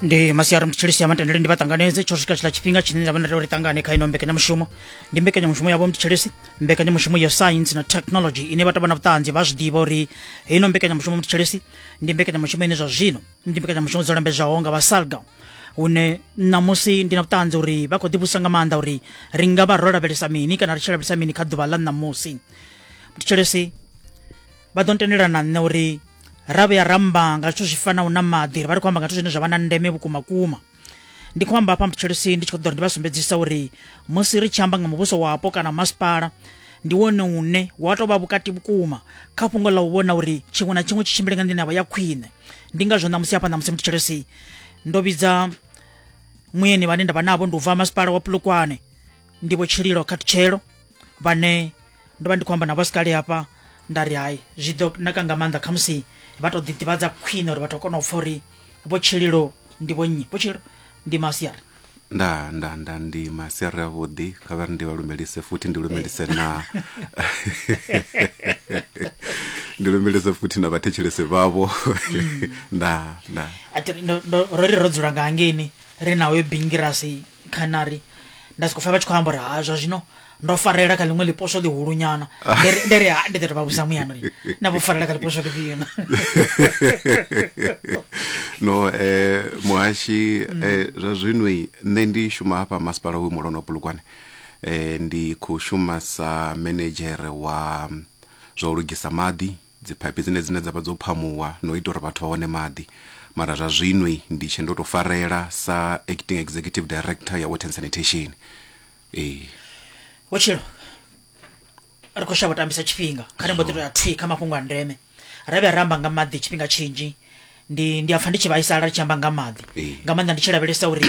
ndi masiari mutshilisi ya matendele ndi vhaṱanganedze tsho swika tshila tshifhinga tshine nda vha na uri ṱangane kha ino mbekanyamushumo ndi mbekanyamushumo yavho mutshilisi mbekanyamushumo ya science na technology ine vha tavha na vhuṱanzi vha zwi ḓivha uri ino mbekanyamushumo mutshilisi ndi mbekanyamushumo ine zwa zwino ndi mbekanyamushumo dzo lambedzwaho nga vha salga hune ṋamusi ndi na vhuṱanzi uri vha khou ḓivhusa nga maanḓa uri ri nga vha ro lavhelesa mini kana ri tshi lavhelesa mini kha ḓuvha ḽa ṋamusi mutshilisi vha ḓo ntendela na nṋe uri ra vhuya ramba nga zwithu zwi fanaho na maḓi ri vha ri khou amba nga zwithu zwine zwa vha na ndeme vhukuma kuma ndi khou amba hafha mutshitshalosi ndi tshi khou ḓora ndi vha sumbedzisa uri musi ri tshi amba nga muvhuso wapo kana masipala ndi wone une wa tou vha vhukati vhukuma kha fhungo ḽa u vhona uri tshiṅwe na tshiṅwe tshi tshimbile nga nḓila ya vha ya khwine ndi ngazwo ṋamusi hafha ṋamusi mutshitshalosi ndo vhidza muyeni vhane nda vha navho ndi u bva masipala wa pulukwane ndi vho tshililo khatutshelo vhane ndo vha ndi khou amba navho sikali hafha nda ri hai zwi ḓo naka nga maanḓa khamusi vha tou ḓiḓivhadza khwine uri vhathu a kona u pfha uri vho tshililo ndi vho nnyi vho tshililo ndi masiari nda nda nda ndi masiari avhuḓi kha vha ri ndi vha lumelise futhi ndi lumelise na ndi lumelise futhi na vhathetshelesi vhavho nda nda A thi- ndo- ndo- ro ri ro dzula nga hangeni ri na hoyo bingirasi canary nda soko pfa vha tshi khou amba uri ha zwa zwino ndo farela kha ḽiṅwe ḽiposwo ḽihulunyana nda ri ha ndi ḓo to vha vhusa muyana uri na vho farela kha ḽiposwo ḽifhio na no eh muhashi mm. eh zwa zwino nṋe ndi shuma hafha masipala wa mulono bulugwane eh ndi khou shuma sa manager wa zwa u lugisa maḓi dziphaiphi dzine dzine dza vha dzo phamuwa na u ita uri vhathu vha wane maḓi. Mara zwa zwino ndi tshe ndo tou farela sa Acting Executive Director ya Water and Sanitation. Ee. Vhutshilo ri khou shavha u tambisa tshifhinga, kha ri mbo ḓi tou ya thwi kha mafhungo a ndeme. Ra vhuya ra amba nga maḓi tshifhinga tshinzhi, ndi ndi a pfa ndi tshi vhaisala ri tshi amba nga maḓi. Ee. Nga maanḓa ndi tshi lavhelesa uri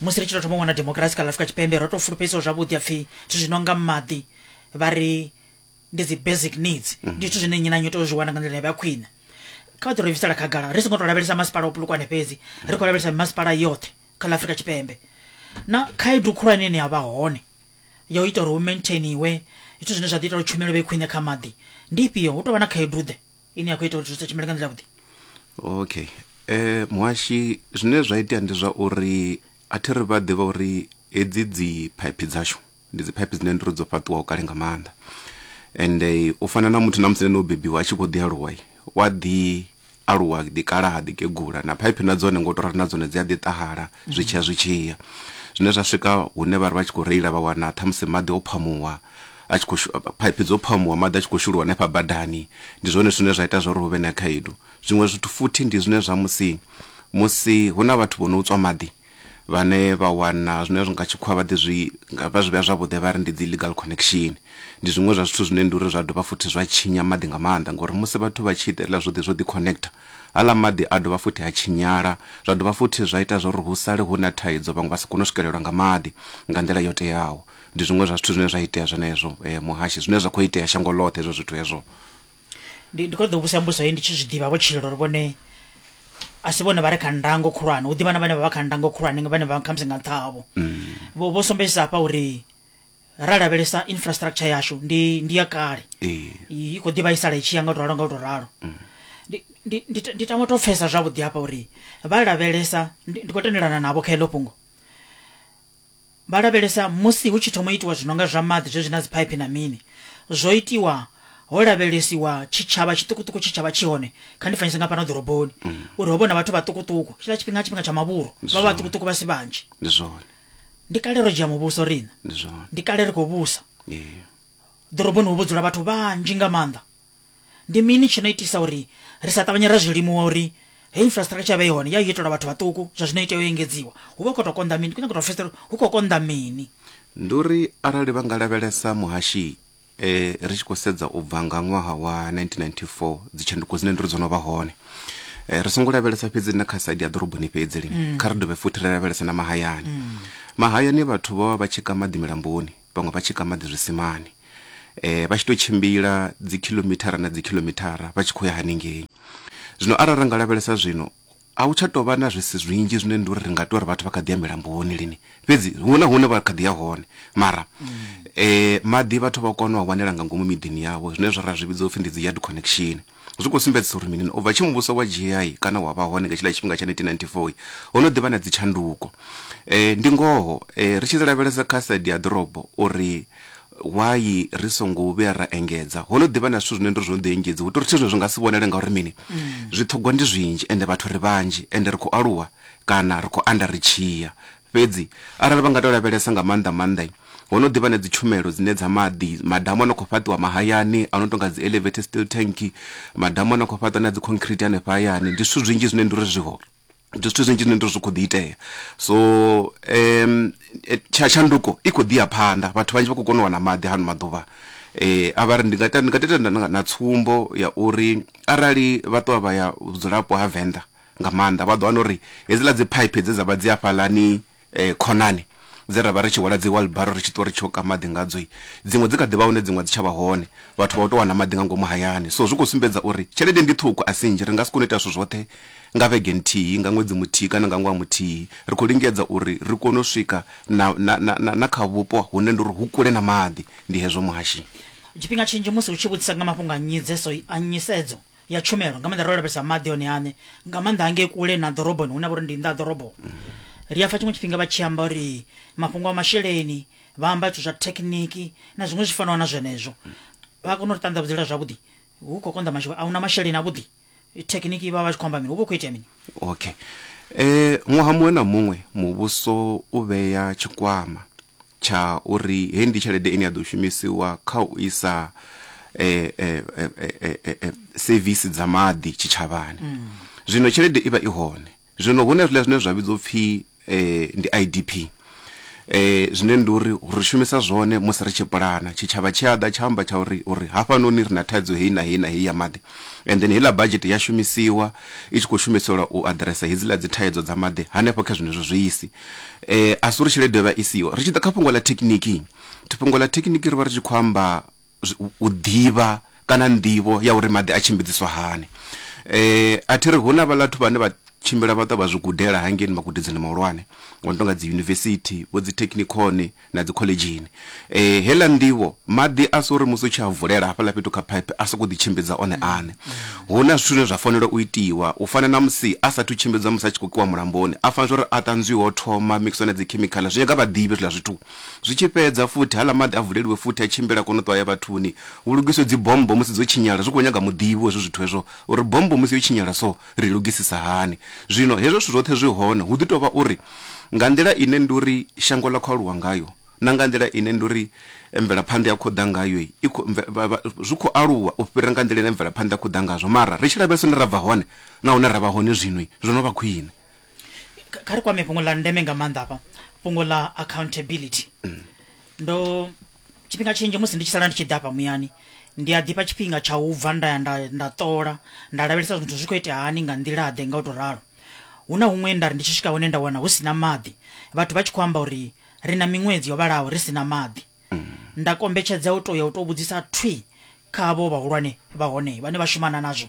musi ri tshi tou thoma u wana demokirasi kha ḽa Afrika Tshipembe ro tou fulufhedziwa zwavhuḓi ha pfi zwithu zwi no nga maḓi vha ri ndi dzi basic needs mhm. ndi zwithu zwine nnyi na nnyi tea u zwi wana nga nḓila ya vha khwine kha vha ḓi ri bvisela khagala ri songo tou lavhelesa masipala o pulukwane fhedzi ri khou lavhelesa masipala yoṱhe kha ḽa afrika tshipembe na khaedu khulwane ine ya vha hone ya u ita uri hu maintainiwe zwithu zwine zwa ḓi ita uri tshumelo vhe khwine kha maḓi ndi ifhio hu tou vha na khaedu ḓe ine ya khou ita uri zwithu sa tshumele nga nḓila vhuḓi okay eh muhashi zwine zwa itea ndi zwa uri a thi ri vha ḓivha uri hedzi dzi phaiphi dzashu ndi dzi phaiphi dzine ndiri dzo fhaṱiwaho kale nga maanḓa and u fana na muthu na musi no bebiwa a tshi kho ḓi aluwa wa ḓi aluwa ḓi kala ha ḓi kegula na phaiphi na dzone ngo to rali na dzone dzi a ḓi ṱahala zwi tshiya zwi tshiya zwine zwa swika hune vha ri vha tshi kho reila vha wana tha musi maḓi o phamuwa a tshi kho phaiphi dzo phamuwa maḓi a tshi kho shuluwa hanefha badani ndi zwone zwine zwa ita zwa uri hu vhe na khaedu zwiṅwe zwithu futhi ndi zwine zwa musi musi hu na vhathu vho no tswa maḓi vhane vha wana zwine zwi nga tshikhuwa vha ḓi zwi vha zwi vhea zwavhuḓi vha ri ndi dzi legal connection ndi zwiṅwe zwa zwithu zwine ndi uri zwa dovha futhi zwa tshinya maḓi nga maanḓa ngori musi vhathu vha tshi ita hezwiḽa zwo ḓi zwo ḓi connector aḽa maḓi a dovha futhi a tshinyala zwa dovha futhi zwa ita zwauri hu sale hu na thaidzo vhaṅwe vha si kone u swikelelwa nga maḓi nga nḓila yo teaho ndi zwiṅwe zwa zwithu zwine zwa itea zwenezwo muhashi zwine zwa kho itea shango ḽoṱhe hezwo zwithu hezwo ndi ndi kho ḓo vhusa mbuso hei ndi tshi zwi ḓivha vho tshilo uri vhone a si vhone vha re kha ndango khulwane hu ḓivha na vhane vha vha kha ndango khulwane nga vhane vha khamusi nga nṱha havho vho vho sumbedzisa hafha uri ra lavhelesa infrastructure yashu ndi ndi ya kale Ee. i i khou ḓi vhaisala i tshi ya nga u to ralo nga u to ralo Ndi- ndi- ndi ta- ndi tama u to pfesa zwavhuḓi hafha uri vha lavhelesa ndi ndi khou tendelana navho kha heḽo fhungo Vha lavhelesa musi hu tshi thoma itiwa zwinonga zwa maḓi zwezwi na dziphaiphi na mini zwo itiwa ho lavhelesiwa tshitshavha tshiṱukuṱuku tshe tshavha tshi hone kha ndi fanyise nga fhano ḓoroboni uri ho vhona vhathu vhaṱukuṱuku tshiḽa tshifhinga tshifhinga tsha mavhuru vha Zwone. vhaṱukuṱuku vha si vhanzhi ndi zwone ndi kale ro dzhia muvhuso riṋe ndi zwone ndi kale ri khou vhusa Ee. ḓoroboni ho vho dzula vhathu vhanzhi nga maanḓa Ndi mini tshi no itisa uri ri sa ṱavhanye ra zwi limuwa uri heyi infrastructure i vhe i hone? Ya yo itelwa vhathu vhaṱuku, zwa zwino i tea u engedziwa. Hu vha hu khou tou konḓa mini? Ndi khou nyanga u tou pfesesa uri hu khou konḓa mini. Ndi uri arali vha nga lavhelesa muhashi e, ri tshi khou sedza u bva nga ṅwaha wa 1994 dzitshanduko dzine ndi ri dzo no vha hone e, ri songo lavhelesa fhedzi na kha saidi ya ḓoroboni fhedzi lini, kha ri dovhe futhi ri lavhelese na mahayani. Mahayani vhathu vho vha vha tshi ka maḓi milamboni, vhaṅwe vha tshi ka maḓi zwisimani vha tshi to tshimbila dzi khilomithara na dzi khilomithara vha tshi khou ya haningei zwino arali ra nga lavhelesa zwino a hu tsha tou vha na zwisi zwinzhi zwine ndi uri ri nga tou ri vhathu vha kha ḓi ya milamboni lini fhedzi huṅwe na huṅwe vha kha ḓi ya hone mara um maḓi vhathu vha kona u a wanela nga ngomu miḓini yavho zwine zwa ra zwi vhidza upfhi ndi dzi yard connection Zwi khou sumbedzisa uri mini? U bva tshe muvhuso wa dzhia kana wa vha hone nga tshiḽa tshifhinga tsha 1994, ho no ḓi vha na dzitshanduko. Ndi ngoho, ri tshi lavhelesa kha saidi ya ḓorobo uri why ri songo vhuya ra engedza, ho no ḓi vha na zwithu zwine ndi uri zwo no ḓi engedziwa. Hu tou ri zwithu zwine zwi nga si vhonale ngauri mini? Zwiṱhogwa ndi zwinzhi ende vhathu ri vhanzhi ende ri khou aluwa kana ri khou anda ri tshi ya. Fhedzi arali vha nga tou lavhelesa nga maanḓa-maanḓa, ho no ḓi vha na dzitshumelo dzine dza maḓi, madamu a no khou fhaṱiwa mahayani a no tou nga dzi-elevated steel tank, madamu a no khou fhaṱwa na dzi concrete hanefha hayani. Ndi zwithu zwinzhi zwine ndi uri zwi hone, ndi zwithu zwinzhi zwine ndi uri zwi khou ḓi itea. So tsha tshanduko i khou ḓi ya phanḓa, vhathu vhanzhi vha khou kona u wana maḓi hano maḓuvha. A vha ri, ndi nga ita, ndi nga tou ita na tsumbo ya uri arali vha ṱuwa vha ya vhudzulapo ha Venḓa, nga maanḓa. Vha ḓo wana uri hedziḽa dzi phaiphi dze dza vha dzi hafhaḽani khonani dze ra vha ri tshi hwala dzi wheelbarrow ri tshi ṱuwa ri tshi yo ka maḓi ngadzo, dziṅwe dzi kha ḓi vha hone dziṅwe a dzi tsha vha hone. Vhathu vha u tou wana maḓi nga ngomu hayani. So zwi khou sumbedza uri tshelede ndi ṱhukhu a si nnzhi, ri nga si kone u ita zwithu zwoṱhe nga vhege nthihi, nga ṅwedzi muthihi kana nga ṅwaha muthihi. Ri khou lingedza uri ri kone u swika na, na, na, na kha vhupo hune ndi uri hu kule na maḓi. Ndi hezwo, Muhashinyi. Tshifhinga tshinzhi musi hu tshi vhudzisa nga mafhungo a nyisedzo, ya tshumelo nga maanḓa ro lavhelesa maḓi one aṋe nga maanḓa hangei kule na ḓoroboni hune vha uri ndi nnḓa ha ḓorobo ri a pfa tshiṅwe tshifhinga vha tshi amba uri mafhungo a masheleni vha amba zwithu zwa thekhiniki na zwiṅwe zwi fanaho na zwenezwo vha kona u ri ṱanḓavhudzela zwavhuḓi hu khou konḓa masheleni a hu na masheleni avhuḓi thekhiniki vha vha tshi khou amba mini hu vha hu khou itea mini okay eh ṅwaha muṅwe na muṅwe muvhuso u vhea tshikwama tsha uri heyi ndi tshelede ine ya ḓo shumisiwa kha u isa sevisi dza maḓi tshitshavhani. Zwino tshelede i vha i hone, zwino hu na hezwiḽa zwine zwa vhidzwa u pfhi ndi I_D_P, zwine ndi uri ri shumisa zwone musi ri tshi pulana. Tshitshavha tshi a ḓa tsha amba tsha uri, uri hafhanoni ri na thaidzo heyi na heyi na heyi ya maḓi and then heiḽa badzhete ya shumisiwa i tshi khou shumiselwa u aḓiresa hedziḽa dzi thaidzo dza maḓi hanefho kha zwenezwo zwiisi. Eh, a si uri tshelede yo vha i siho ri tshi ḓa kha fhungo ḽa thekhiniki fhungo ḽa thekhiniki ri vha ri tshi khou amba zwi- u ḓivha kana nḓivho ya uri maḓi a tshimbidziswa hani eh a thi ri hu na vhalathu vhane vha tshimbila vha ṱwa vha zwi gudela hangei magudedzini mahulwane ngo no tonga dzi yunivesithi vho dzi thekhinikoni na dzi khoḽedzhini. Heiḽa nḓivho, maḓi a si uri musi u tshi a vulela hafhaḽa fhethu kha phaiphi a sokou ḓitshimbidza one aṋe. Hu na zwithu zwine zwa fanela u itiwa, u fana na musi a saathu tshimbidzwa musi a tshi khou kiwa mulamboni, a fanela zwa uri a ṱanzwiwe o thoma, a mikisiwe na dzikhemikhala, zwi nyaga vhaḓivhi hezwiḽa zwithu. Zwi tshi fhedza futhi, haaḽa maḓi a vuleliwe futhi a tshimbile a kone u ṱuwa a ye vhathuni. Hu lugiswe dzi bommbo musi dzo tshinyala, zwi khou nyaga muḓivhi wa hezwo zwithu hezwo uri bommbo musi yo tshinyala so, ri lugisisa hani. Zwino hezwo zwithu zwoṱhe zwi hone, hu ḓi tou vha uri nga nḓila ine ndi uri shango ḽa khou aluwa ngayo na nga nḓila ine ndi uri mvelaphanḓa ya khou ḓa ngayo, i khou, zwi khou aluwa u fhira nga nḓila ine mvelaphanḓa ya khou ḓa ngazwo. Mara ri tshi lavhelesa hune ra bva hone na hune ra vha hone zwino, zwo no vha khwine. Kha ri kwame fhungo ḽa ndeme nga maanḓa hafha, fhungo ḽa accountability. Ndo. Tshifhinga tshinzhi musi ndi tshi sala ndi tshi ḓa hafha muyani ndi a ḓifha tshifhinga tsha u bva nda ya nda nda ṱola nda lavhelesa zwithu zwi khou itea hani nga nḓila ḓe nga u tou ralo hu na huṅwe nda ri ndi tshi swika hone nda wana hu si na maḓi vhathu vha tshi khou amba uri ri na miṅwedzi yo vhalaho ri si na maḓi nda kombetshedza u tou ya u tou vhudzisa thwi kha vho vhahulwane vha hone vhane vha shumana nazwo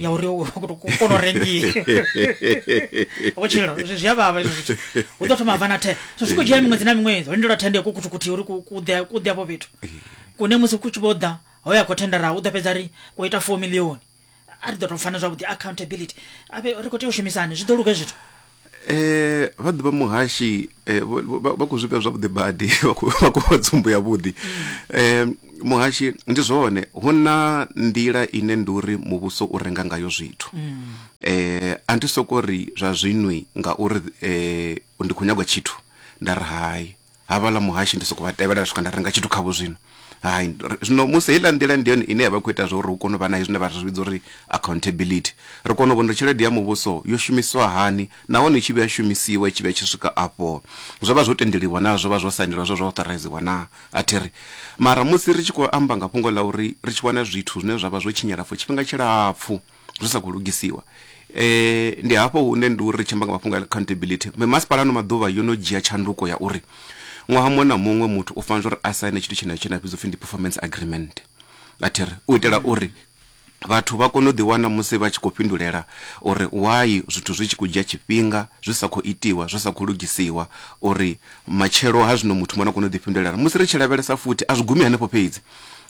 ya uri u kona u rengiwa vhutshilo zwi a vhavha izwo zwithu u ḓo thoma bva na the so zwi khou dzhia miṅwedzi na miṅwedzi ho lindela thende ku kuthukuthi uri ku ḓe ku ḓe afho fhethu kune musi ku tshi vho ḓa ho ya khou thendara u ḓo fhedza ri ku ita four milioni a ri ḓo tou fana zwavhuḓi accountability a ri khou tea u shumisani zwi ḓo luge zwithu Eh vha ḓivha muhashi eh vha khou zwivhea zwavhuḓi badi vha khou vha khou fha tsumbo ya vhuḓi eh muhashi ndi zwone hu na nḓila ine ndi uri muvhuso u renga ngayo zwithu eh a ndi soko ri zwa zwinwi ngauri eh ndi khou nyagwa tshithu nda ri hai Havhaḽa muhashi ndi sokou vha tevhela swika nda renga tshithu khavho zwino. Hai, zwino musi heiḽa nḓila ndi yone ine ya vha i khou ita zwa uri hu kone u vha na hezwi zwine vha zwi vhidza uri accountability. Ri kona u vhona uri tshelede ya muvhuso yo shumiswa hani nahone i tshi vhuya ya shumisiwa i tshi vhuya i tshi swika afho zwo vha zwo tendeliwa naa, zwo vha zwo sainelwa, zwo vha zwo authoriziwa naa. A thi ri. Mara musi ri tshi khou amba nga fhungo ḽa uri ri tshi wana zwithu zwine zwa vha zwo tshinyala for tshifhinga tshilapfu, zwi sa khou lugisiwa. Ndi hafho hune ndi uri ri tshi amba nga mafhungo a accountability, mimasipala ano maḓuvha yo no dzhia tshanduko ya uri ṅwaha muṅwe na muṅwe muthu u fanela uri a saine tshithu tshenetsho tshine tsha vhidzwa u pfhi ndi performance agreement. A thi ri? U itela uri vhathu vha kone u ḓiwana musi vha tshi khou fhindulela uri why zwithu zwi tshi khou dzhia tshifhinga zwi sa khou itiwa, zwi sa khou lugisiwa uri matshelo ha zwino muthu muṅwe na kone u ḓifhindulela. Musi ri tshi lavhelesa futhi a zwi gumi hanefho fhedzi,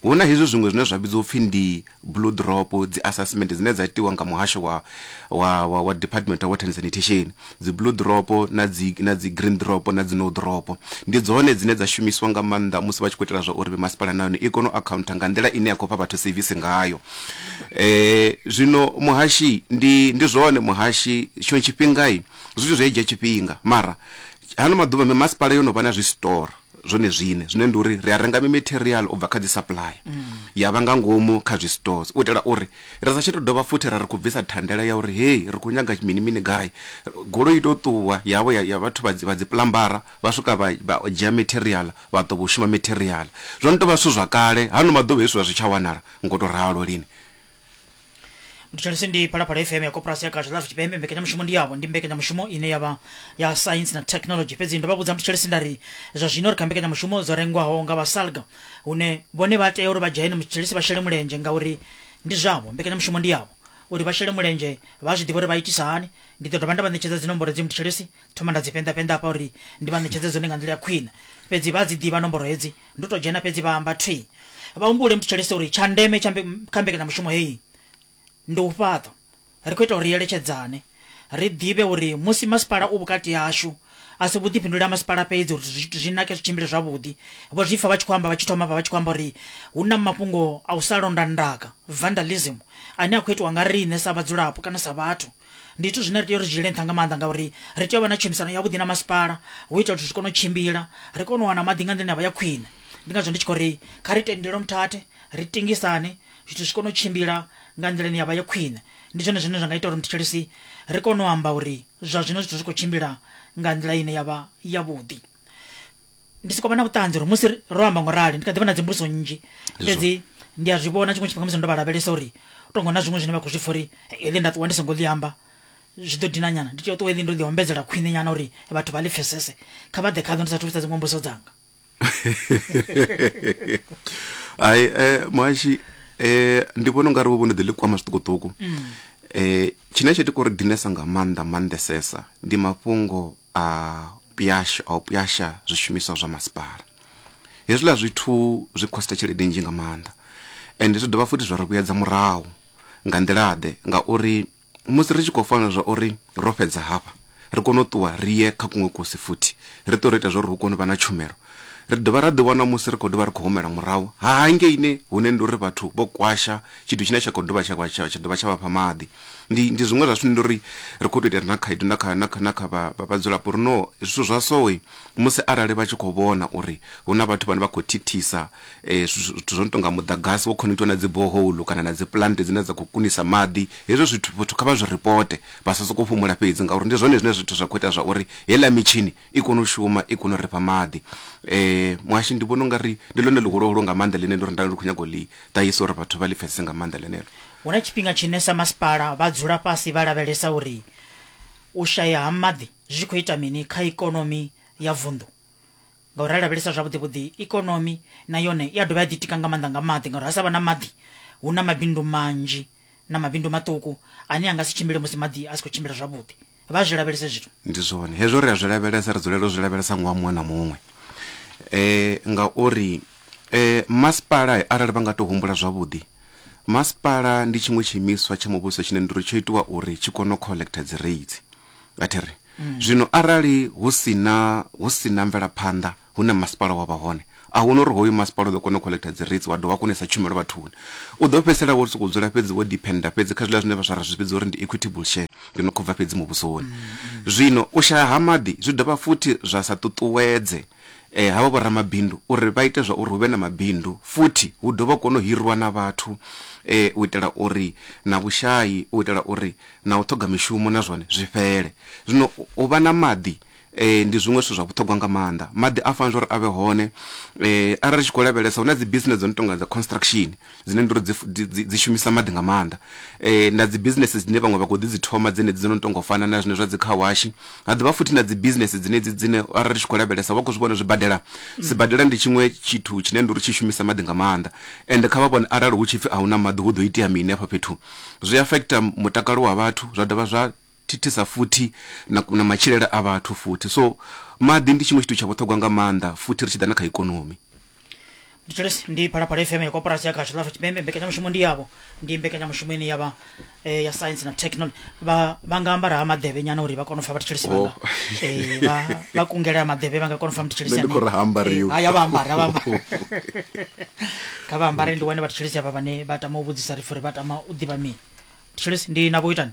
Hu na hezwi zwiṅwe zwine zwa vhidzwa u pfi ndi Blue Drop, dzi assessment dzine dza itiwa nga muhasho wa, wa, wa, wa Department of Water and Sanitation. Dzi Blue Drop na dzi, na dzi Green Drop na dzi No Drop. Ndi dzone dzine dza shumiswa nga maanḓa musi vha tshi khou itela zwa uri mimasipala na yone i kone u akhauntha nga nḓila ine ya khou fha vhathu sevisi ngayo. E, zwino muhashi, ndi, ndi zwone muhashi, tshiṅwe tshifhinga zwithu zwi a dzhia tshifhinga, mara hano maḓuvha mimasipala yo no vha na zwi store. zwone zwine zwine ndi uri ri a renga mimetherial u bva kha dzi supply ya vha nga ngomu kha zwistores u itela uri ri sa tsha tou dovha futhi ra ri khou bvisa thandela ya uri hei ri khou nyaga mini mini gai goloi i tou ṱuwa yavho ya, ya vhathu vha dzi- vha dzi plambara vha swika vha vha dzhia metherial vha ḓo vho shuma metherial zwo no tou vha zwithu zwa kale hano maḓuvha hezwi zwa zwi tsha wanala ngo tou ralo lini nditshalise ndi phalaphala fm ya koporasi ya gaza lafe chipembe mbekanyamushumo ndi yavo ndi mbekanyamushumo ine yava ya sainsi na technology fhedzi ndo vha vhudza mutitshalise nda ri zwa zwino ri kha mbekanyamushumo dzo rengwaho nga vhasalga hune vhone vha tea uri vha dzhene mutitshalise vha shele mulenzhe ngauri ndi zwavho mbekanyamushumo ndi yavo uri vha shele mulenzhe vha zwi ḓivha uri vha itisa hani ndi ḓo dovha nda vha ṋetshedza dzinomboro dzi mutitshalise thoma nda dzi penḓapenḓa hafha uri ndi vha ṋetshedze dzone nga nḓila ya khwine fhedzi vha dzi ḓivha nomboro hedzi ndo to dzhena fhedzi vha amba thi vha humbule mutshetshelese uri tsha ndeme kha mbekanyamushumo heyi ndi u fhaṱa ri khou ita uri eletshedzane ri ḓivhe uri musi masipala u vhukati hashu a si vhuḓifhinduleli ha masipala fhedzi uri zwithu zwi nake zwi tshimbile zwavhuḓi vho zwi pfa vha tshi khou amba vha tshi thoma vha vha tshi khou amba uri hu na mafhungo a u sa londa ndaka vandalism ane a khou itiwa nga riṋe sa vhadzulapo kana sa vhathu ndi zwithu zwine ri tea uri dzhiele nṱha nga maanḓa ngauri ri tea u vha na tshumisano yavhuḓi na masipala hu itela zwithu zwi kone u tshimbila ri kone u wana maḓi nga nḓila ya vha ya khwine ndi ngazwo ndi tshi khou ri kha ri tendele muthathe ri tingisane zwithu zwi kone u tshimbila nga nḓila ine ya vha ya khwine ndi zwone zwine zwa nga ita uri muthetshelesi ri kone u amba uri zwa zwino zwithu zwi khou tshimbila nga nḓila ine ya vha yavhuḓi ndi soko vha na vhuṱanzi uri musi ri- ro amba ngo rali ndi kha ḓi vha na dzimbudziso nnzhi fhedzi ndi a zwi vhona tshiṅwe tshifhinga musi ndo vha lavhelesa uri to ngo na zwiṅwe zwine vha khou zwi pfa uri heḽi nda ṱuwa ndi songo ḽi amba zwi ḓo dina nyana ndi tea u ṱuwa heḽi ndo ḽi ombedzela khwine nyana uri vhathu vha ḽi pfesese kha vha ḓe khaḓo ndi sathu vhudza dziṅwe mbudziso dzanga hai eh, muhashi eh, ndi vhona ungari vho vho ni ḓi ḽi kwama zwiṱukuṱuku eh, tshine tsho ita uri dinesa nga maanḓa maanḓesesa ndi mafhungo a pwyasha, a u pwyasha zwishumiswa zwa masipala. Hezwiḽa zwithu zwi khosta tshelede nnzhi nga maanḓa ende zwi dovha futhi zwa ri vhuyedza murahu. Nga nḓila-ḓe? Ngauri musi ri tshi khou fanela zwa uri ro fhedza hafha, ri kone u ṱuwa ri ye kha kuṅwe kusi futhi, ri ṱuwe ro ita zwa uri hu kone u vha na tshumelo, ri dovha ra ḓiwana musi ri khou dovha ri khou humela murahu hangeini hune ndi uri vhathu vho kwasha tshithu tshine tsha khou dovha tsha vha tsha dovha tsha vha fha maḓi. Ndi, ndi zwiṅwe zwa zwithu ndi uri ri khou tou itela na khaedu na kha, na kha, na kha vha, vha vhadzulapo uri no zwithu zwa sowe musi arali vha tshi khou vhona uri hu na vhathu vhane vha khou thithisa eh, zwithu zwo no tou nga muḓagasi wo khonekithiwa na dzi boholu kana na dzi plant dzine dza khou kunisa maḓi hezwo zwithu vhathu kha vha zwi ripote vha sa sokou fhumula fhedzi ngauri ndi zwone zwine zwithu zwa khou ita zwa uri heiḽa mitshini i kone u shuma i kone u ri fha maḓi. Muhashi ndi vhona u nga ri ndi ḽone ḽihuluhulu nga maanḓa ḽine ndo ri nda ndi khou nyaga u ḽi ṱahisa uri vhathu vha ḽi pfhesese nga maanḓa ḽeneḽo. Hu na tshifhinga tshine sa masipala vha dzula fhasi vha lavhelesa uri u shaya ha maḓi zwi khou ita mini kha ikonomi ya vunḓu ngauri ra lavhelesa zwavhuḓi vhuḓi ikonomi na yone i a dovha ya ḓitika nga maanḓa nga maḓi ngauri ha sa vha na maḓi hu na mabindu manzhi na mabindu maṱuku ane a nga si tshimbile musi maḓi a si khou tshimbila zwavhuḓi. vha zwi lavhelese zwithu ndi zwone hezwo ri a zwi lavhelesa ri dzulela u zwi lavhelesa ngowa muṅwe na muṅwe um ngauri um masipala arali vha nga to humbula zwavhuḓi masipala ndi tshiṅwe tshiimiswa tsha muvhuso tshine ndiri tsho itiwa uri tshi kone u collecta dzi rates athi ri mm. zwino arali hu sina hu sina mvelaphanḓa hune masipala wa vha hone, a hu na uri hoyu masipala u ḓo kona u kholektha dzi rates wa dovha wa kona u isa tshumelo vhathuni. U ḓo fhedzisela wo sokou dzula fhedzi wo diphennda fhedzi kha zwiḽa zwine vhaswa ra zwi vhidza uri ndi equitable share, ndi no khou bva fhedzi muvhusoni. Zwino u shaya ha maḓi zwi dovha futhi zwa sa ṱuṱuwedze havha vhoramabindu uri vha ite zwa uri hu vhe na mabindu futhi hu dovhe hu kone u hiriwa na vhathu u itela uri na vhushayi, u itela uri na u ṱhoga mishumo na zwone zwi fhele. Zwino u vha na maḓi Ndi zwiṅwe zwithu zwa vhuṱhogwa nga maanḓa, maḓi a fanela uri a vhe hone. Arali ri tshi khou lavhelesa hu na dzi business dzo no tonga dza construction dzine ndi uri dzi dzi shumisa maḓi nga maanḓa, na dzi business dzine vhaṅwe vha khou ḓi dzi thoma dzenedzi dzo no tonga u fana na zwine zwa dzi car wash. Ha dovha futhi na dzi business dzenedzi dzine arali ri tshi khou lavhelesa vha khou zwi vhona zwibadela, sibadela ndi tshiṅwe tshithu tshine ndi uri tshi shumisa maḓi nga maanḓa ende kha vha vhone arali hu tshipfi a hu na maḓi hu ḓo itea mini hafha fhethu. Zwi affecter mutakalo wa vhathu zwa dovha zwa thithisa futhi na, na matshilele a vhathu futhi so maḓi ndi tshiṅwe tshithu tsha vhuṱhogwa nga maanḓa futhi ri tshi ḓa na kha ikonomi Mthetshelesi ndi Phalaphala FM ya koporasi ya Khasho Lafha Tshipembe mbekanyamushumo ndi yavho ndi mbekanyamushumo ine yavha eh, ya science na technology vha vha nga ambara ha maḓevhe nyana uri vha kone u fa vhathetshelesi Oh. vhanga eh, vha vha kungele ha maḓevhe vha nga kona u fa mthetshelesi Nṋe ndi khou ri ha ambariwi. haya vha ambara vha ambara kha vha ambare ndi wane vhathetshelesi avha vhane vha tama u vhudzisa rifu uri vha tama u ḓivha mini mthetshelesi ndi na vho itani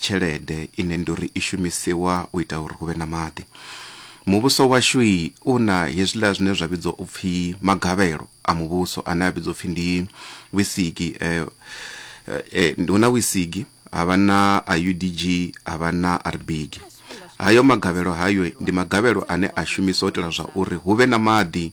tshelede ine ndi uri i shumisiwa u ita uri hu vhe na maḓi muvhuso washu u na hezwiḽa zwine zwa vhidzwa u pfhi magavhelo a muvhuso ane a vhidzwa upfhi ndi wisigi hu na wisigi ha vha na a udg ha vha na rbig hayo magavhelo hayo ndi magavhelo ane a shumiswa u itela zwa uri hu vhe na maḓi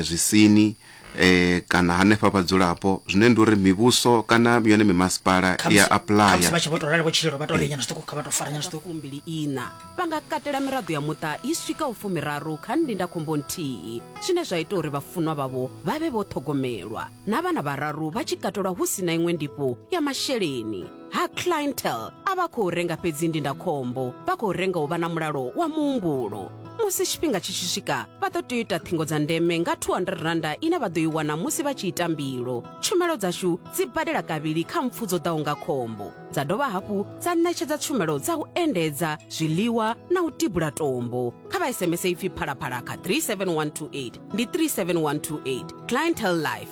zwisini eh kana hanefha vhadzulapo zwine ndi uri mivhuso kana yone mimasipala i ya khamusi apuḽaya vha tshi vho to rali vho tshilelo vha to ri nyana zwiṱuku kha vha to fara nyana zwiṱuku fumbili ina vha nga katela miraḓo ya muṱa i swikaho fumiraru kha ndindakhombo nthihi zwine zwa ita uri vhafunwa vhavho vha vhe vho ṱhogomelwa na vhana vhararu vha tshi katelwa hu si na iṅwe ndifho ya masheleni ha clientele a vha khou renga fhedzi ndindakhombo vha khou renga u vha na mulalo wa muhumbulo musi tshifhinga tshi tshi swika vha ḓo tea u ita ṱhingo dza ndeme nga 200 randa ine vha ḓo i wana musi vha tshi ita mbilo tshumelo dzashu dzi badela kavhili kha mpfu dzo ḓaho nga khombo dza dovha hafhu dza ṋetshedza tshumelo dza u endedza zwiḽiwa na u tibula tombo kha vha sms ipfi phalaphala kha 37128 ndi 37128 clientele life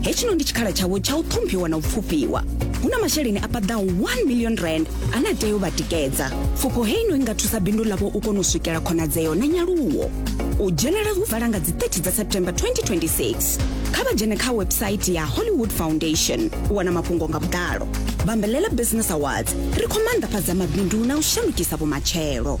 hechino ndi tshikhala tshavho tsha u ṱhomphiwa na u pfufhiwa hu na masheleni a paḓaho 1 million rand ane a tea u vha tikedza pfufho heino i nga thusa bindu ḽavho u kona u swikela khonadzeo na nyaluwo u dzhenela hu vala nga dzi 30 dza september 2026 kha vha dzhene kha website ya hollywood foundation u wana mafhungo nga vhuḓalo bambelela business awards ri khou maanḓafhadza mabindu na u shandukisa vhumatshelo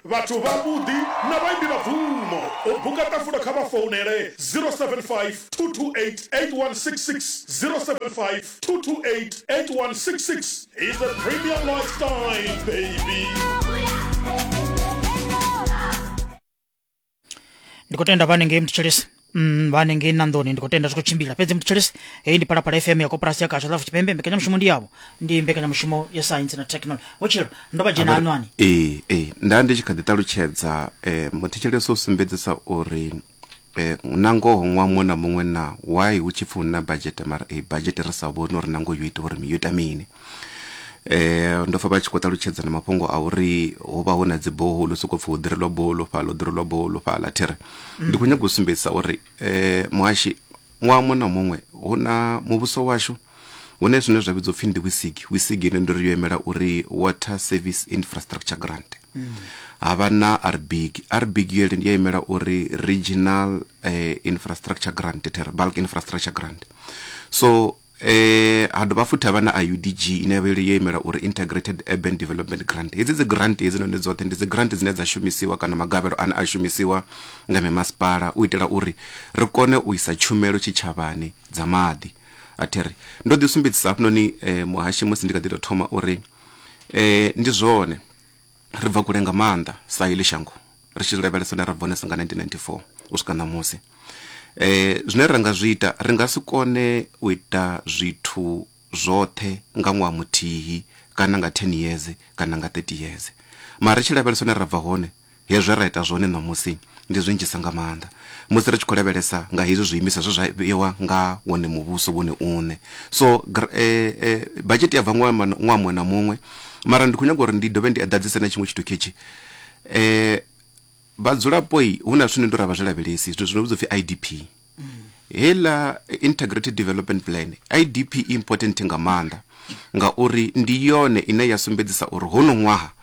Vhathu vhavhuḓi na vhaimbi vha bvumo. U buka ṱafula kha vha founele 0752288166, 0752288166 is a premium lifestyle baby. ndikutenda vane ngei mutshilisi Mm, vane ngei nandoni ndikutenda zwi khou tshimbila fhedzi mutshilisi heyi ndi palapala fm ya koporasi ya kasha lafu tshipembe mbekanyamushumo ndi yavho ndi mbekanyamushumo ya saintsi na technology vhutshilo ndo vha dzhena anwani ee ee nda ndi tshi kha ḓi ṱalutshedza um muthetshelesi u sumbedzisa uri um na ngoho ṅwaha muṅwe na muṅwe na why hu tshi pfi hu na badzhete mara eyi badzhete ri sa vhoni uri na ngoho yo ita uri mi- yo ita mini eh ndo fa vha tshi khou ṱalutshedza na mafhungo a uri ho vha hu na dzi boholo sokou pfhi hu ḓirelwa boholo fhala hu ḓirelwa boholo fhala thiri mm. ndi khou nyaga u sumbedzisa uri eh muhashi ṅwaha muṅwe na muṅwe hu na muvhuso washu hune zwine zwa vhidzwa upfhi ndi wisig wisig ine ndo ri yo imela uri water service infrastructure grant mm. ha vha na rbig rbig yo ndi ya imela uri regional eh, infrastructure grant bulk infrastructure grant so E, ha dovha futhi ha vha na IUDG ine ya vha yo imela uri Integrated Urban Development Grant. Hedzi dzi grant hedzi noni dzoṱhe ndi dzi grant dzine dza shumisiwa kana magavhelo ane a shumisiwa nga mimasipala u itela uri ri kone u isa tshumelo tshitshavhani dza maḓi. A thi ri ndo ḓi sumbedzisa hafhanoni eh, muhashi musi ndi kha ḓi tou thoma uri eh, ndi zwone Ri bva kule nga maanḓa sa heḽi shango ri tshi lavhelesa hune ra bva hone sa nga 1994 u swika ṋamusi. Eh, zwine ra nga zwi ita, ri nga si kone u ita zwithu zwoṱhe nga ṅwaha muthihi kana nga 10 years kana nga 30 years. Mara ri tshi lavhelesa hune ra bva hone, hezwe ra ita zwone ṋamusi ndi zwinzhisa nga maanḓa. musi ri tshi khou lavhelesa nga hezwi zwiimiswa zwe zwa vheiwa nga wone muvhuso wone une so eh, eh, bajeti ya bva ṅwaha muṅwe na muṅwe mara ndi khou nyanga uri ndi dovhe ndi eḓadzise na tshiṅwe tshithu khetshi eh vhadzulapo hu na zwithu ni ndo ra vha zwi lavhelesi zwithu zwino vhidza upfhi idp hela integrated development plan idp important nga maanḓa ngauri ndi yone ine ya sumbedzisa uri hono ṅwaha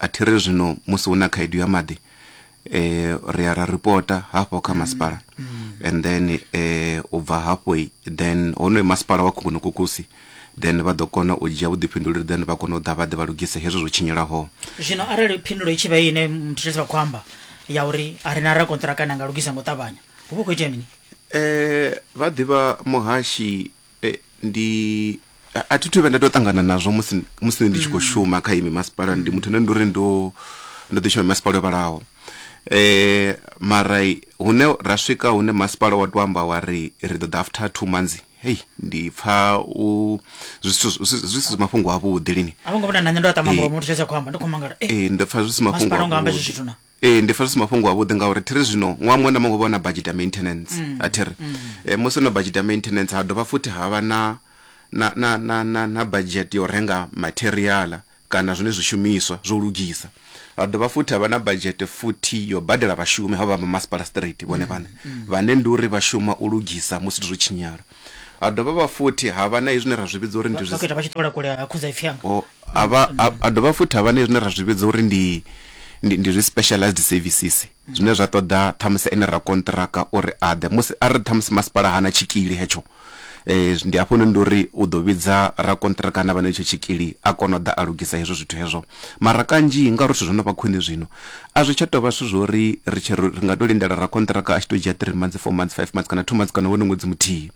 A thi ri zwino musi hu na khaedu ya maḓi um ri ya ra ripota hafho kha masipala and then um u bva hafho then honoyo masipala wa Khukhunokukusi then vha ḓo kona u dzhia vhuḓifhinduleli then vha kona u ḓa vha ḓe vha lugise hezwo zwo tshinyelaho. Zwino arali phindulo i tshi vha ine muthetshedzi vha khou amba ya uri a ri na rakonṱiraka ane a nga lugisa nga u ṱavhanya hu vha hu khou itea mini? Um vha ḓivha muhashi e, ndi a thi thu vhe nda tou ṱangana nazwo musi musi ndi tshi khou mm. shuma kha imi masipala ndi muthu ane ndi uri ndo ndo ḓi shuma masipala o vhalaho eh mara hune ra swika hune masipala wa to amba wa ri ri ḓo ḓa after two months hei ndi pfa u zwi si mafhungo a vhuḓi lini a vhongo vhona na nṋe ndo a ṱamba mulomo muthu tsha khou amba ndi khou mangala eh, eh ndo pfa zwi si mafhungo a vhuḓi ee ndi pfesesa mafhungo avhuḓi ngauri thiri zwino ṅwaha muṅwe na muṅwe vha na budget ya maintenance mm. a thiri mm. e, musi no budget ya maintenance ha dovha futhi ha vha na na, na, na, na, na budget yo renga materiala kana zwine zwishumiswa zwo lugisa ha dovha futhi ha vha na budget futhi yo badela vhashumi ha vha vha masipala street vhone vhane mm, mm. vhane ndi uri vha shuma u lugisa musi zwo tshinyala Ha dovha vha futhi ha vha na hezwi zwine ra zwi vhidza uri ndi vhaketa vha tshi ṱola kule ha khudzaipfi anga o a vha a a dovha futhi ha vha na hezwi zwine ra zwi vhidza uri ndi ndi ndi zwi specialized services zwine zwa ṱoḓa ṱhamusi ene ra kontraka uri a ḓe musi a ri ṱhamusi masipala hana tshikili hetsho eh ndi hafho noni ndi uri u ḓo vhidza ra kontraka na vha na hetsho tshikili a kona u ḓa a lugisa hezwo zwithu hezwo Mara kanzhi ngauri zwithu zwo no vha khwine zwino, a zwi tsha tou vha zwithu zwo ri ri tshi ri nga tou lindela rakonṱiraka a tshi tou dzhia three months, four months, five months kana two months kana wone ṅwedzi muthihi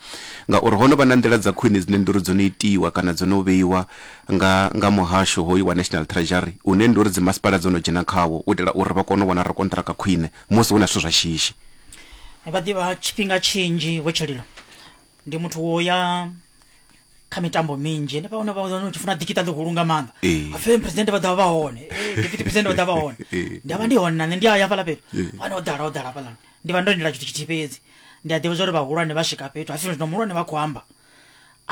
ngauri ho no vha na nḓila dza khwine dzine ndi uri dzo no itiwa kana dzo no vheiwa nga nga muhasho hoyu wa National Treasury une ndi uri dzi masipala dzo no dzhena khawo u itela uri vha kone u wana rakonṱiraka khwine musi hu na zwithu zwa shishi. Vha ḓivha tshifhinga tshinzhi, Vho Tsholilo. ndi muthu wo ya kha mitambo minzhi ende pano vha wana tshifuna dikita ḽihulu nga maanḓa Eh. afei president vha ḓa vha hone Eh, deputy president vha ḓa vha hone Eh. ndi avha ndi hone nane ndi aya fhala fhethu Eh. vhane o ḓala o ḓala fhalani ndi vha ndo lindela tshithu tshithihi fhedzi ndi a ḓivha zwa uri vhahulwane vha swika fhethu hafi zwino muhulwane vha khou amba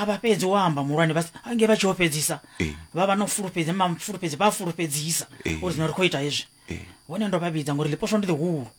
avha fhedzi wo amba muhulwane vha ange vha tshi ho fhedzisa Eh. vha vha no fulufhedzi mafulufhedzi vha fulufhedzisa Eh. uri zwino ri khou ita hezwi Eh. hone ndo vha vhidza ngori ḽiposwa ndi ḽihulu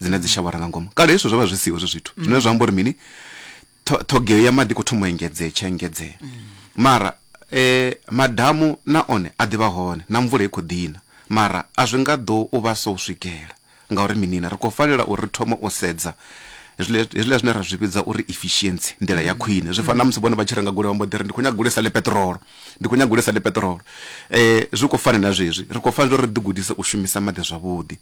dzine dzi shavhara nga ngomu kale hezwo zwo vha zwi siho hezwo zwithu mm. zwine zwa amba uri mini ṱhogeo ya maḓi khou thoma u engedzea tshi engedzea mm. mara eh madamu na one a ḓivha hone na mvula i khou ḓina mara a zwi nga ḓo u vha so u swikela ngauri minina ri khou fanela uri ri thome u sedza hezwiḽa zwine ra zwi vhidza uri efficiency nḓila ya khwine zwi fana na musi vhone vha tshi renga goloi vhambo ḓiri ndi khou nyaga goloi sa le petrolo ndi khou nyaga goloi sa le petrolo um zwi khou fana na zwezwi ri khou fanela uri ri ḓigudise u shumisa maḓi zwavhuḓi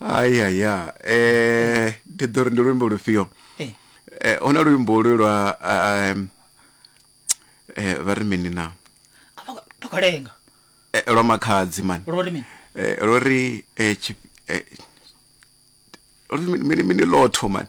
ayaya eh ndi ḓo ri ndi luimbo lufhio Eh. eh hu na luimbo lu lwa ah, em, eh vha ri mini na tokalenga Eh, lwa makhadzi mani lwo ri mini Eh, lori eh, tshi- eh, lori mini- mini mini lotho mani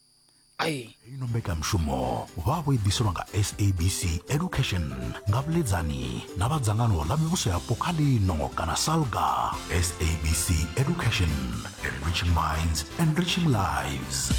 ai ino mbekanyamushumo vhavho i ḓiselwa nga sabc education nga vhuḽedzani na vha dzangano ḽa mivhuso yapo kha lino kana salga sabc education enriching minds enriching lives